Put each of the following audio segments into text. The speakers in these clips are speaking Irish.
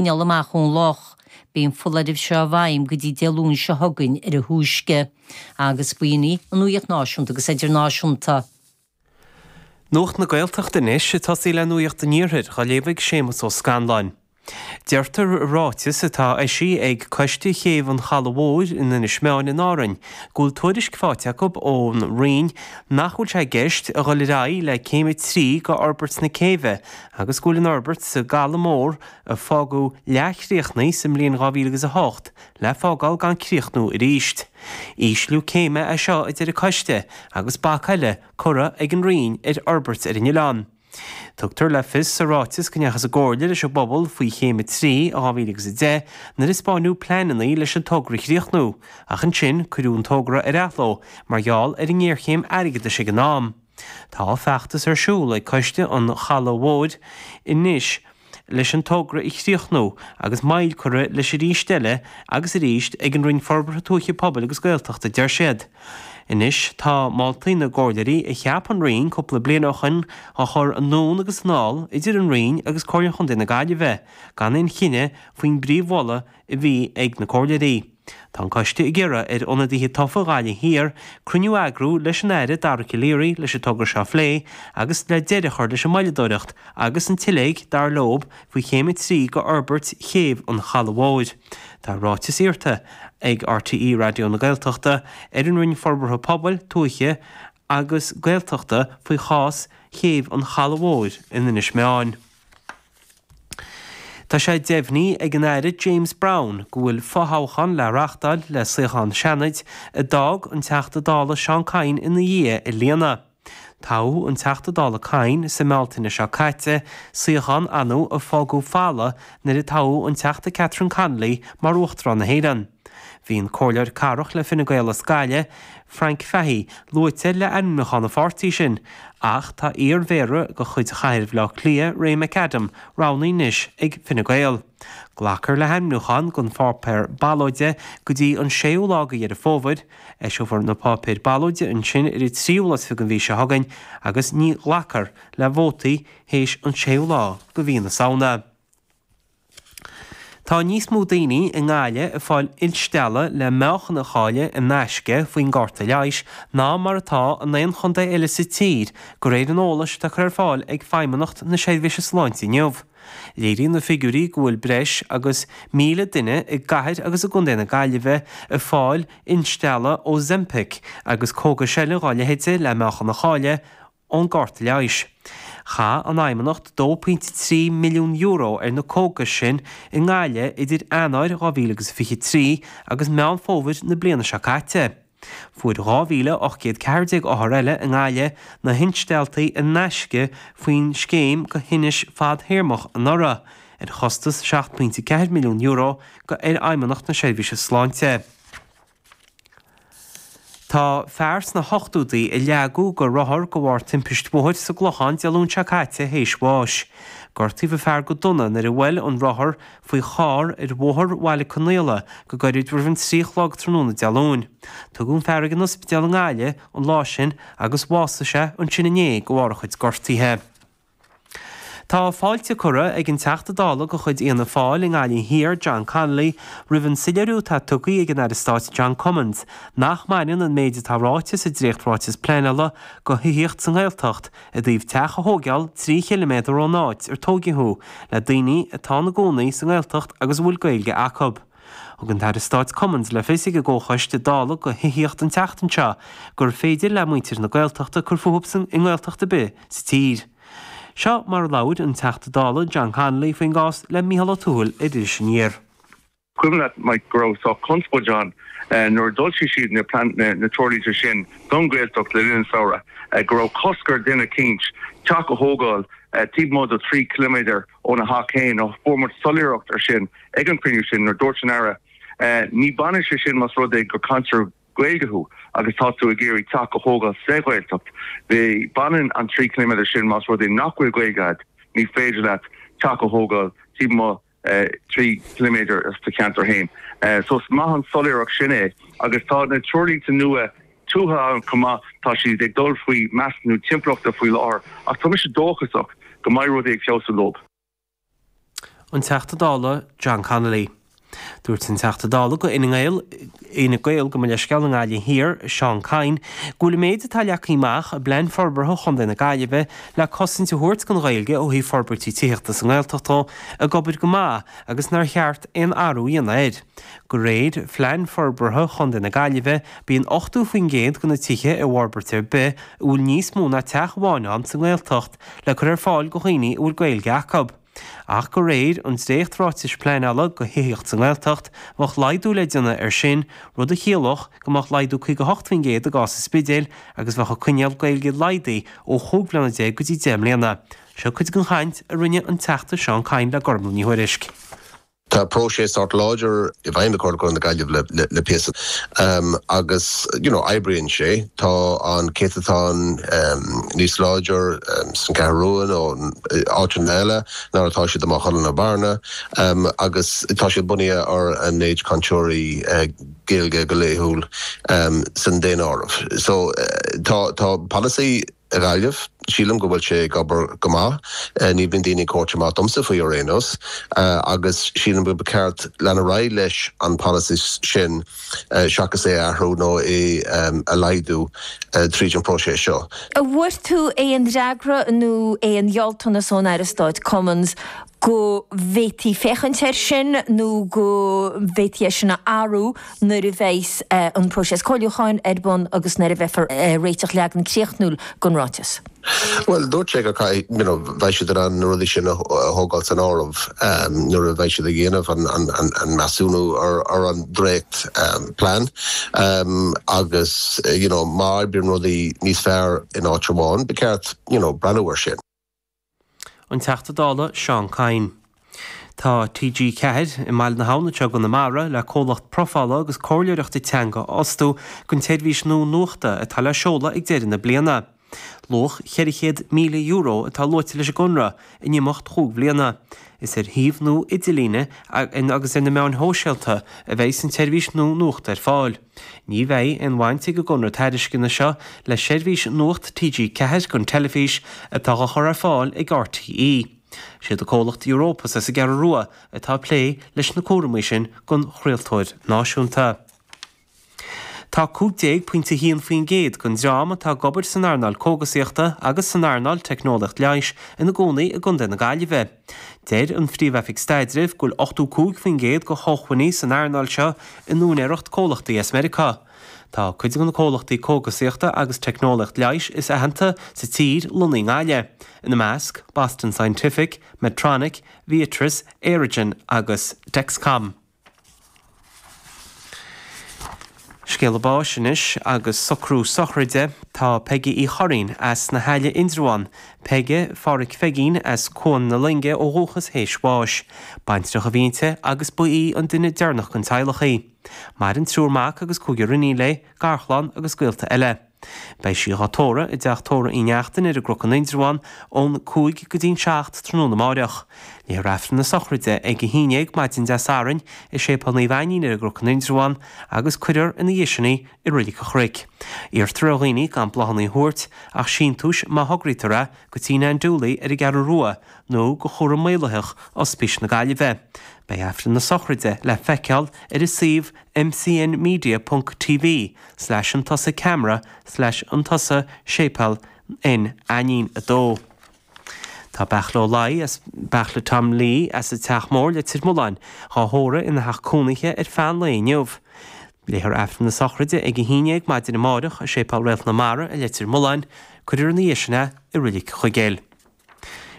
ndul amach ón loch. Beidh an foláireamh seo i bhfeidhm go dtí Dé Luain seo chugainn ar a thúisce, agus b'in í an nuaíocht náisiúnta agus idirnáisiúnta. Nuacht na Gaeltachta anois ag tosaí le nuaíocht an Iarthair, dhá léamh ag Séamus Ó Scanláin. Deirtear i ráiteas atá eisithe ag Coiste Chéibh an Chalaidh Mhóir in Inis Meáin in Árainn go bhfuil tuairisc faighte acu ón Roinn nach bhfuil sé i gceist a dhul ar aghaidh le céim a trí d'fhorbairt na céibhe agus go bhfuil an fhorbairt sa gCaladh Mór a fágadh leathchríochnaithe sa mbliain 2000 agus a hocht le fágáil gan críochnú arís. Ísliú céime é seo a deir an Coiste agus bac eile curtha ag an Roinn ar fhorbairt ar an oileán. Tugtar le fios sa ráiteas go ndeachthas i gcomhairle leis an bpobal faoi chéim a trí i 2000 agus a deich nuair a spáineadh pleananna leis an togra a chríochnú ach ansin cuireadh an togra ar athló mar gheall ar an ngéarchéim airgeadais ag an am. Tá feachtas ar siúl ag coiste an Chalaidh Mhóir anois leis an togra a chríochnú agus moill curtha air aríst eile agus arís ag an Roinn Forbartha Tuaithe Pobail agus Gaeltachta deir siad. Anois tá moltaí na gcomhairleoirí a cheap an Roinn cúpla bliain ó shin á gcur anonn agus anall idir an Roinn agus Comhairle Chontae na Gaillimhe gan aon chinneadh faoin bpríomh-mholadh a bhí ag na comhairleoirí. Tá an Coiste ag iarraidh ar ionadaithe tofa Ghaillimh Thiar cruinniú a eagrú leis an Aire Dara Calleary leis an togra seo a phlé agus le deireadh a chur leis an moilleadóireacht agus an tsiléig, dar leo, faoi Chéim 3 go fhorbairt Chéibh an Chalaidh Mhóir. Tá ráiteas iarrtha ag RTÉ Raidió na Gaeltachta ar an Roinn Forbartha Pobail, Tuaithe agus Gaeltachta faoi chás Chéibh an Chalaidh Mhóir in Inis Meáin. Tá sé deimhnithe ag an Aire James Browne go bhfuil fothoghchán le reáchtáil le suíochán Seanaid a d'fhág an Teachta Dála Seán Kyne ina dhiaidh a líonadh. Toghadh an Teachta Dála Kyne sa mBealtaine seo caite, suíochán a a fágadh folamh nuair a toghadh an Teachta Catherine Connolly mar Uachtarán na hÉireann. Bhí an Comhairleoir Cathrach le Fine Gael as Gaillimh, Frank Fahey, luaite le ainmniúchán an pháirtí sin, ach tá iar-Mhéara de chuid Chathair Bhaile Átha Cliath, Ray McAdam, roghnaithe anois ag Fine Gael. Glacfar le hainmniúcháin don pháipéar ballóide go dtí an séú lá de Dheireadh Fómhair. Eiseofar na páipéir ballóide ansin ar an tríú lá is fiche den mhí seo chugainn agus ní ghlacfar le vótaí théis an séú lá de mhí na Samhna. Tá níos mó daoine i nGaillimh ag fáil instealladh le meáchan a chailleadh in aisce faoin gcárta leighis ná mar atá in aon chontae eile sa tír de réir an eolais atá curtha ar fáil ag Feidhmeannacht na Seirbhíse Sláinte inniu. Léiríonn na figiúirí go bhfuil breis agus 1,000 duine i gcathair agus i gcontae na Gaillimhe ag fáil instealladh Ozempic agus cógais eile dá leithéid le meáchan a chailleadh ón gCairt Leighis. Chaith an Fheidhmeannacht €2.3 milliún ar na cógais sin i nGaillimh idir Eanáir 2023 agus Meán Fómhair na bliana seo caite. Fuair 2,814 othar eile i nGaillimh na hinstealltaí in aisce faoin scéim go thinneas fadtéarmach anuraidh, ar chostas €7.4 milliún ar Fheidhmeannacht na Seirbhíse Sláinte. Tá fear sna hochtúdaí a leagadh go rothar de bharr timpist bhóthair sa gClochán Dé Luain seo caite théis bháis. Gortaíodh an fear go dona nuair a bhuail an rothar faoi charr ar bhóthar Bhaile Conaola go gairid roimh an trí chlog tráthnóna Dé Luain. Tugadh an fear ag an ospidéal i nGaillimh an lá sin agus bhásaigh sé ansin inné de bharr a chuid gortaithe. Tá fáilte curtha ag an Teachta Dála de chuid Fhianna Fáil i nGaillimh Thiar, John Connolly, roimh an soiléiriú atá tugtha ag an Aire Stáit John Cummins nach mbaineann an méid atá ráite sa dréacht-Ráiteas Pleanála go thithíocht sa nGaeltacht i dtaobh teach a thóigeáil trí chiliméadar ón áit ar tóigeadh thú le daoine atá ina gcónaí sa nGaeltacht agus a bhfuil Gaeilge acu. Thug an tAire Stáit Cummins le fios ag an gComhchoiste Dála go thithíocht an tseachtain seo gur féidir le muintir na Gaeltachta cur fúthu i nGaeltacht ar bith sa tír. Seo mar a labhair an Teachta Dála John Connolly faoin gcás le Micheál Ó Tuathail ar Iris Aniar. Is cuimhin leat, Mike, go raibh sách conspóid ann nuair a d'fhoilsigh siad na treoirlínte sin don Ghaeltacht le linn an tsamhraidh, go raibh cosc ar dhuine eicínt teach a thógáil taobh amuigh de thrí chiliméadar Óna theach féin, fuair muid soiléireacht air sin ag an chruinniú sin nuair a dúirt an Aire, Ní bhaineann sé sin más rud é gur cainteoir Gaeilge thú agus tá tú ag iarraidh teach a thógáil sa Ghaeltacht. Baineann an trí chiliméadar sin más rud é nach bhfuil Gaeilge agat, ní féidir leat teach a thógáil taobh amuigh de thrí chiliméadar as do cheantar féin. So is maith an soiléireacht sin é agus tá na treoirlínte nua tuaithe ann chomh maith. Tá siad ag dul faoi mheasúnú timpeallachta faoi láthair ach tá mise dóchasach go mbeidh rudaí ag feabhsú leo. An Teachta Dála John Connolly. Dúirt an Teachta Dála de chuid Fhine Gael, gabh mo leithscéal, i nGaillimh Thiar, Seán Kyne, go bhfuil an méid atá leagtha amach i bPlean Forbartha Chontae na Gaillimhe le cosaint a thabhairt don Ghaeilge ó thaobh forbairtí tithíochta sa nGaeltacht ag obair go maith agus nár cheart aon athrú a dhéanamh air. De réir Phlean Forbartha Chontae na Gaillimhe, bíonn 80% de na tithe i bhforbairt ar bith a bhfuil níos mó ná teach amháin ann sa nGaeltacht le cur ar fáil go dhaoine a bhfuil Gaeilge acu. Ach de réir an dréacht-Ráitis Pleanála do Thithíocht sa nGaeltacht, bheadh laghdú le déanamh air sin, rud a chiallódh go mbeadh laghdú 58% i gcás an Spidéil agus bheadh an coinníoll Gaeilge laghdaithe ó chúig bhliana déag go dtí deich mbliana. Seo cuid den chaint a rinne an Teachta Seán Kyne le Gormfhlaith Ní Thuairisg. Tá próiseas sách láidir i bhfeidhm ag Comhairle Contae na Gaillimhe le píosa agus you know oibríonn sé. Tá an céatatán níos láidir sa gCeathrú Rua nó áiteanna eile ná mar atá siad i Maigh Chuilinn nó Bearna agus tá siad bunaithe ar an méid cainteoirí Gaeilge go laethúil san daonáireamh. So tá tá polasaí. i nGaillimh. Sílim go bhfuil sé ag obair go maith. Ní bhíonn daoine ag tabhairt amach domsa faoi ar aon nós agus sílim go mba cheart leanacht ar aghaidh leis an bpolasaí sin seachas é a athrú nó é a laghdú tríd an próiseas seo. An bhfuair tú aon fhreagra nó aon ghealltanas ón Aire Stáit Cummins go bhféadfaí féachaint air sin nó go bhféadfaí é sin a athrú nuair a bheidh an próiseas comhairliúcháin ar bun agus nuair a bheifear ag réiteach leagan críochnúil den ráiteas. Bhuel, dúirt sé go, you know, mbeidh siad in ann na rudaí sin a thógáil san áireamh nuair a bheidh siad ag déanamh an measúnú ar an dréacht plean agus, you know, má oibríonn rudaí níos fearr in áit amháin, ba cheart, you know, breathnú air sin. An Teachta Dála Seán Kyne. Tá TG4 i mBaile na hAbhann i gConamara le comhlacht profála agus comhairleoireachta teanga a fhostú don tseirbhís nua nuachta atá le seoladh ag deireadh na bliana. Luach €400,000 atá luaite leis an gconradh in imeacht chúig bhliana. Is ar shuíomh nua idirlíne agus ar na meáin shóisialta a bheidh an tseirbhís nua nuachta ar fáil. Ní bheidh aon bhaint ag an gconradh tairisceana seo le seirbhís Nuacht TG4 don teilifís atá á chur ar fáil ag RTÉ. Is iad an comhlacht Europus as an gCeathrú Rua atá ag plé leis na cúramaí sin don chraoltóir náisiúnta. Tá 15.1% den dream atá ag obair san earnáil cógasaíochta agus san earnáil teicneolaíocht leighis ina gcónaí i gContae na Gaillimhe. Deir an Phríomh-Oifig Staidrimh go bhfuil 85% de shócmhainní san earnáil seo in úinéireacht comhlachtaí as Meiriceá. Tá cuid de na comhlachtaí cógasaíochta agus teicneolaíocht leighis is aitheanta sa tír lonnaithe i nGaillimh, ina measc, Boston Scientific, Medtronic, Viatris, Aerogen agus Dexcom. Scéala báis anois agus socrú sochraide, tá Peige Uí Churraoin as na hAille, Indreabhán, Peige Phádhraic Pheigín as Cuan na Loinge ó dhúchas théis bháis. Baintreach a bhí inti agus ba í an duine deireanach den teaghlach í. Maireann triúr mac agus cúigear iníon léi, garchlann agus gaolta eile. Beidh sí dhá tórramh i dTeach Tórraimh Uí Neachtain ar an gCnoc in Indreabhán ón 5 go dtí an 7 tráthnóna amárach. Léifear Aifreann na Sochraide ag a haon déag maidin Dé Sathairn i Séipéal Naomh Ainnín ar an gCnoc in Indreabhán agus cuirfear ina dhiaidh sin í i Reilig an Chnoic. Iarrtar ar dhaoine gan bláthanna a thabhairt ach síntiúis má thograítear é go Tigh Nan Dooley ar an gCeathrú Rua nó go Chúram Maolaitheach Ospís na Gaillimhe. Beidh Aifreann na Sochraide le feiceáil ar an suíomh mcnmedia.tv. slash camera slash séipéal naomh Ainín 2. Tá Beartla Ó Laoi nó Beartla Tom Lee as an Teach Mór Leitir Mealláin dhá thórramh ina theach cónaithe ar feadh an lae inniu. Léifear Aifreann na Sochraide ag a haon déag maidin amáireach i Séipéal Réalt na Mara i Leitir Mealláin, cuirfear ina dhiaidh sin é i Reilig Chuigéil.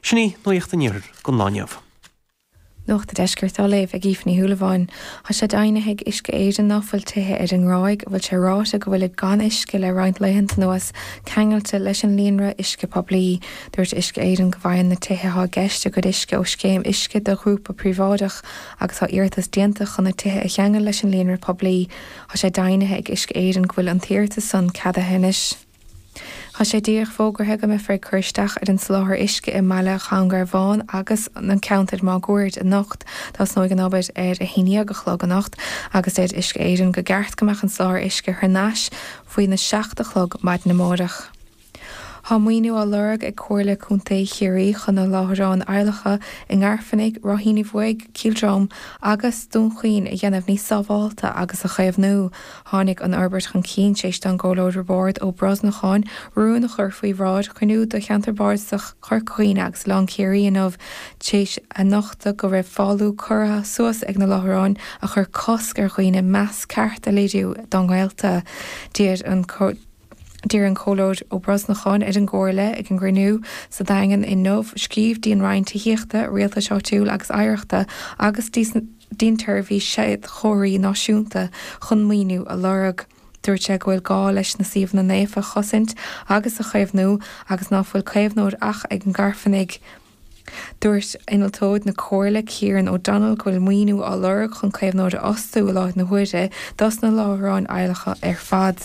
Sin í nuaíocht an iarthair don lá inniu. Nuacht an Deiscirt á léamh ag Aoife Ní Shúilleabháin. Tá sé deimhnithe ag Uisce Éireann ná fuil tithe ar an nGráig a bhfuil sé ráite go bhfuilid gan uisce le roinnt laethanta anuas ceangailte leis an líonra uisce poiblí. Dúirt Uisce Éireann go bhfaigheann na tithe atá i gceist a gcuid uisce ó scéim uisce do ghrúpa príobháideach agus tá iarratas déanta chun na tithe a cheangal leis an líonra poiblí. Tá sé deimhnithe ag Uisce Éireann go bhfuil an t-iarratas san ceadaithe anois. Tá sé díreach fógartha go mbeifear ag cur isteach ar an soláthar uisce i mBaile an Ghóilín Bháin agus an ceantar máguaird anocht. Tosnóidh an obair ar a haon déag a chlog anocht agus deir Uisce Éireann go gceart go mbeadh an soláthar uisce thar nais faoina seacht a chlog maidin amárach. Tá maoiniú á lorg ag Comhairle Contae Chiarraí chun na láithreáin adhlactha i nGairfeanaigh, Ráithín Uí Bhuaigh, Cill Dromann agus Dún Chaoin a dhéanamh níos sábhálta agus a chaomhnú. Tháinig an fhorbairt chun cinn tar éis don gComhairleoir Roibeárd Ó Brosnacháin rún a chur faoi bhráid chruinniú de Cheantar Bardasach Chorca Dhuibhne agus Oileán Chiarraí inniu tar éis a nochtadh go raibh fálú curtha suas ag na láithreáin a chuir cosc ar dhaoine meas ceart a léiriú dá ngaolta. D'iarr an D'iarr an Comhairleoir Ó Brosnacháin ar an gComhairle ag an gcruinniú sa Daingean inniu scríobh dtí'n Roinn Tithíochta, Rialtais Áitiúil agus Oidhreachta agus dtí'n tSeirbhís Séadchomharthaí Náisiúnta chun maoiniú a lorg. Dúirt sé go bhfuil gá leis na suíomhanna naofa a chosaint agus a chaomhnú agus ná fuil caomhnóir ach ag an nGairfeanaigh. Dúirt Innealtóir na Comhairle, Kieran O'Donnell go bhfuil maoiniú á lorg chun caomhnóir a fhostú i láthair na huaire dos na láithreáin adhlactha ar fad.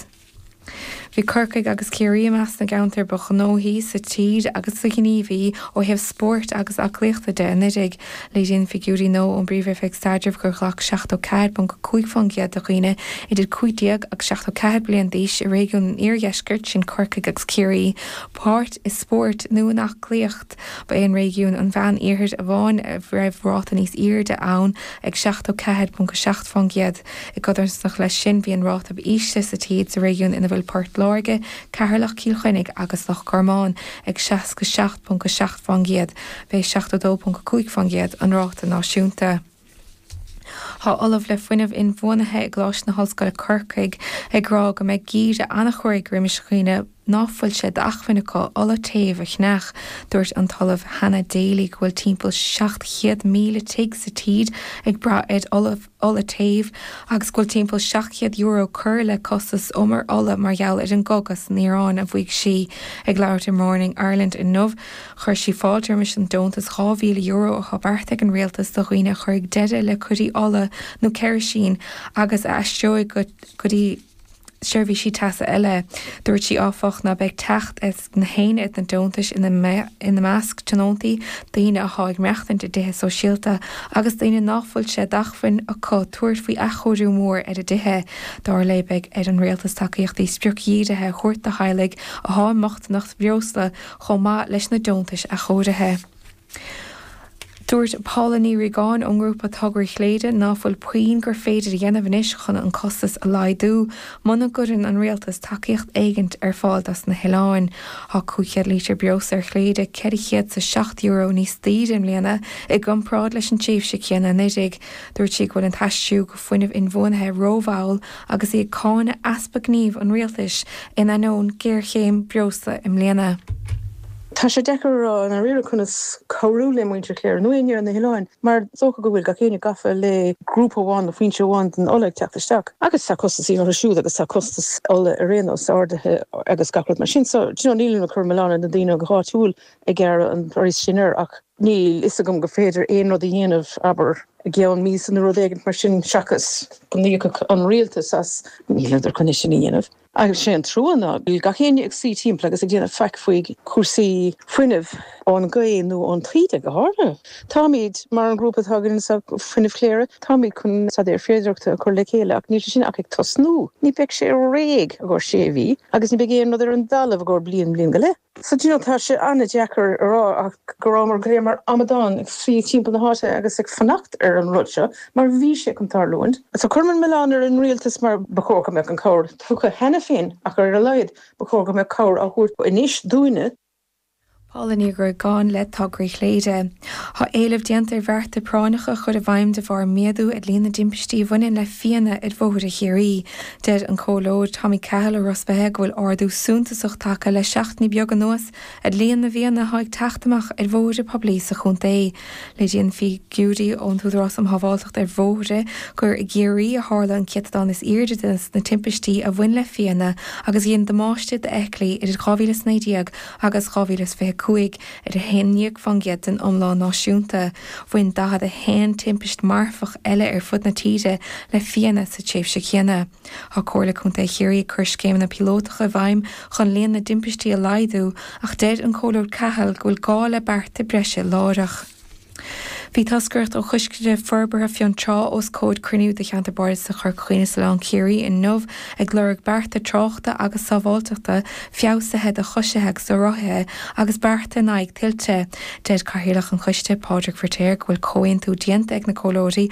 Bhí Corcaigh agus Ciarraí i measc na gceantar ba ghnóthaí sa tír agus ba ghníomhaí ó thaobh spóirt agus aclaíochta de anuraidh. Léiríonn figiúirí nua ón bPríomh-Oifig Staidrimh gur ghlac 74.5% de dhaoine idir 15 agus 74 bliain d'aois i réigiún an Iardheiscirt, sin Corcaigh agus Ciarraí, páirt i spórt nó in aclaíocht. Ba é an réigiún an Mheán-Iarthair amháin a raibh ráta níos airde ann ag 74.7 fán gcéad. I gcodarsnacht leis sin, bhí an ráta ab ísle sa tír sa réigiún ina bhfuil Port Láirge, Ceatharlach, Cill Chainnigh agus Loch Garman ag 67.7 fán gcéad. B'é 72.5 fán gcéad an ráta náisiúnta. Tá Ollamh le Fuinneamh Inbhuanaithe i gColáiste na hOllscoile Corcaigh ag rá go mbeidh geimhreadh an-chruaidh roimis dhaoine ná fuil sé d'acmhainn acu ola téimh a cheannach. Dúirt an tOllamh Hannah Daly go bhfuil timpeall 700,000 tigh sa tír ag brath ar ola téimh agus go bhfuil timpeall €700 curtha le costas umar ola mar gheall ar an gcogadh san Iaráin. Bhí sí ag labhairt ar Morning Ireland inniu. Chuir sí fáilte roimis an deontas €2,000 atá beartaithe ag an Rialtas do dhaoine a chuirfidh deireadh le coirí ola nó ceirisín agus a aistreoidh go dtí seirbhísí teasa eile. Dúirt sí, áfach, ná beidh teacht ag gach éinne ar na deontais, ina measc tionóntaí, daoine atá ag maireachtaint i dtithe sóisialta agus daoine ná fuil sé d'acmhainn acu tabhairt faoi athchóiriú mór ar a dtithe. Dar léi, beidh ar an Rialtas tacaíochtaí spriocdhírithe a thabhairt do theaghlaigh atá i mbochtaineacht bhreosla, chomh maith leis na deontais athchóirithe. Dúirt Paula Ní Ríogáin ón ngrúpa Tograí Chléire ná fuil puinn gur féidir a dhéanamh anois chun an costas a laghdú muna gcuireann an Rialtas tacaíocht éigint ar fáil dos na hoileáin. Tá 500 lítear breosla ar Chléire €407 níos daoire i mbliana i gcomparáid leis an tréimhse céanna anuiridh. Dúirt sí go bhfuil an t-aistriú go fuinneamh inbhuanaithe rómhall agus í ag cáineadh easpa gnímh an Rialtais in ainneoin géarchéim breosla i mbliana. Tá sé deacair a rá i ndáiríre conas cabhrú le muintir Chléire, nó éinne ar na hoileáin, mar is dócha go bhfuil gach éinne gafa le grúpa amháin nó foinse amháin den ola ag teacht isteach agus tá costasaí orthu siúd agus tá costas ola ar aon nós ardaithe agus gach rud mar sin. So, do you know, nílim ag cur milleán ar na daoine áitiúil ag gearradh an praghas sin air ach níl fhios agam gur féidir aon rud a dhéanamh, abair, i gceann míosa nó rud éigin mar sin seachas go n-íocfadh an Rialtas as. Níleadar chun é sin a dhéanamh. Ach sé an trua ná go bhfuil gach éinne ag suí timpeall agus ag déanamh faic faoi chúrsaí fuinnimh, ón ngaoth nó ón taoide go háirithe. Táimid, mar an grúpa atá againn sa Fuinneamh Chléire, táimid chun staidéar féidearthachta a chur le chéile ach níl sé sin ach ag tosnú. Ní bheidh sé réidh i gcomhair sé mhí agus ní bheidh aon rud ar an dtalamh i gcomhair bliain, bliain go leith. So, do you know, tá sé an-deacair a rá ach go rabhamar go léir mar amadáin ag suí timpeall na háite agus ag fanacht ar an rud seo mar bhí sé chun tarlúint. So cuirim an milleán ar an rialtas mar ba chóir go mbeadh an cabhair tugtha cheana féin ach ar a laghad ba chóir go mbeadh cabhair á thabhairt anois dúinne. Paula Ní Ríogáin le Tograí Chléire. Tá éileamh déanta ar bhearta práinneacha a chur i bhfeidhm de bharr méadú ar líon na dtimpistí a bhaineann le fianna ar bhóithre Chiarraí. Deir an Comhairleoir Tommy Cahill ó Ros Beithe go bhfuil ardú suntasach tagtha le seachtainí beaga anuas ar líon na bhfianna atá ag teacht amach ar bhóithre poiblí sa chontae. Léiríonn figiúirí ón Údarás um Shábháilteacht ar Bhóithre gur i gCiarraí a tharla an céatadán is airde des na timpistí a bhain le fianna agus a dhein damáiste d'fheithiclí idir 2019 agus 2025. Ar 11 fán gcéad den iomlán náisiúnta, bhain 41 timpist marfach eile ar fud na tíre le fianna sa tréimhse chéanna. Tá Comhairle Contae Chiarraí ag cur scéimeanna píolótacha i bhfeidhm chun líon na dtimpistí a laghdú ach deir an Comhairleoir Cahill go bhfuil gá le bearta breise láithreach. Bhí toscaireacht ó Choiste Forbartha Fionntrá os comhair cruinniú de Cheantar Bardasach Chorca Dhuibhne is Oileán Ciarraí inniu ag lorg bearta tráchta agus sábháilteachta feabhsaithe do choisithe agus do rothaithe agus bearta in aghaidh tuilte. Deir Cathaoirleach an Choiste, Pádraig Firtéar, go bhfuil comhaontú déanta ag na comhairleoirí